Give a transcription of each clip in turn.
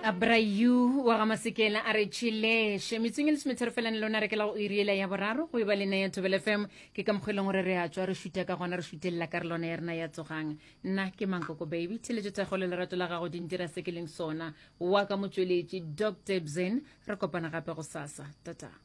abrayu wa ga masekela a re tšheleše metseng e le semetherefelane lona re kela go iriela ya boraro go e ba lena ya tobel fm ke ka mokgwa e leng gore re a tswa re šuta ka gona re šutelela ka re lona ya rena ya tsogang nna ke mankoko baby theletšo thego le lerato la gago dintira se ke leng sona wa ka motsweletši dr bzen re kopana gape go sasa tata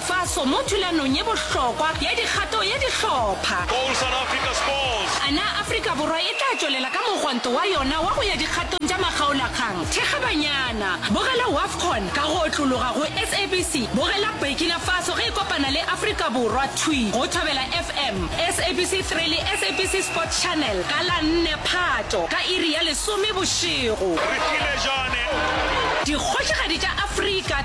Faso mo thulanong ye bohlokwa ya dikgato ya dihlopha. Goal South Africa scores! A na Afrika Borwa e tla tšwelela ka mogwanto wa yona wa go ya dikgatong tša makgaolakgang? Thekga banyana! Bogela Wafcon ka go otlologa go SABC. Bogela Burkina Faso ge e kopana le Afrika Borwa thwi go Thobela FM, SABC 3 le SABC Sport Channel ka la 4 Phato ka iri ya lesome bošego. Refilejane! Dikgošigadi tša Afrika!